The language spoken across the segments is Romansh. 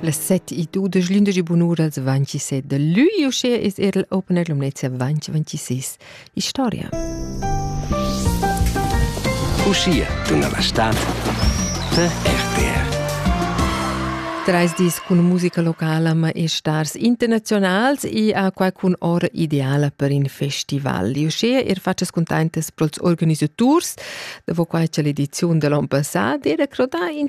Las set e dudesch glündegi bunura da 27 da lui uschè es er il Opener Lumnezia 2026. Historia. Uschia tuna la stad da RTR. Treis dis cun musica locala ma e stars internazionals e a quai cun ora ideala per in festival. Uschia er faccias contentas pels organisaturs, dopo quai c'è l'edizione dell'on passat, era crodà in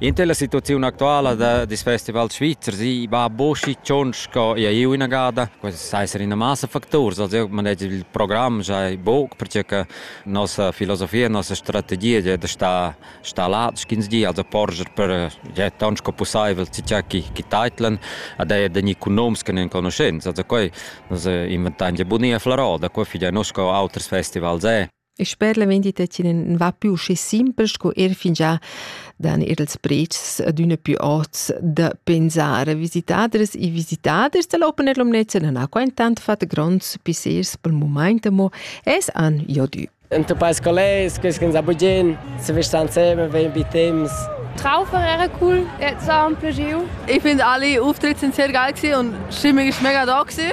Inter la situaziun actuala da dis festivals svizzers i va boschi tschonc sco eir inagada. Quels seisen ina massa facturs, also io manegia il program sai buc perche che nossa filosofia, nossa strategia è da star star là sch'ins di, also porscher per ja taunt sco pussaivel tgei chi chi teitlan ad eir da gnir cun noms che nun conoschents. Also quai nus inventain gia bunia Flarò, da quai fich eir noss sco auters festivals è. E sper la vendita in va più usci simpel sco er fingià dan er els prezs adüna più ots da pensare. Visitaders e visitaders da l'Open Air Lumnezia nan ha qua intant fat gronds pissers pel mumaint amo es an Jodü. Ente pais collegs, quels che ens abugien, se vesta insieme, vein bei temps. Traufer era cool, jetzt auch ein Plagio. Ich finde alle Auftritte sind sehr geil und Stimmung ist mega da gewesen.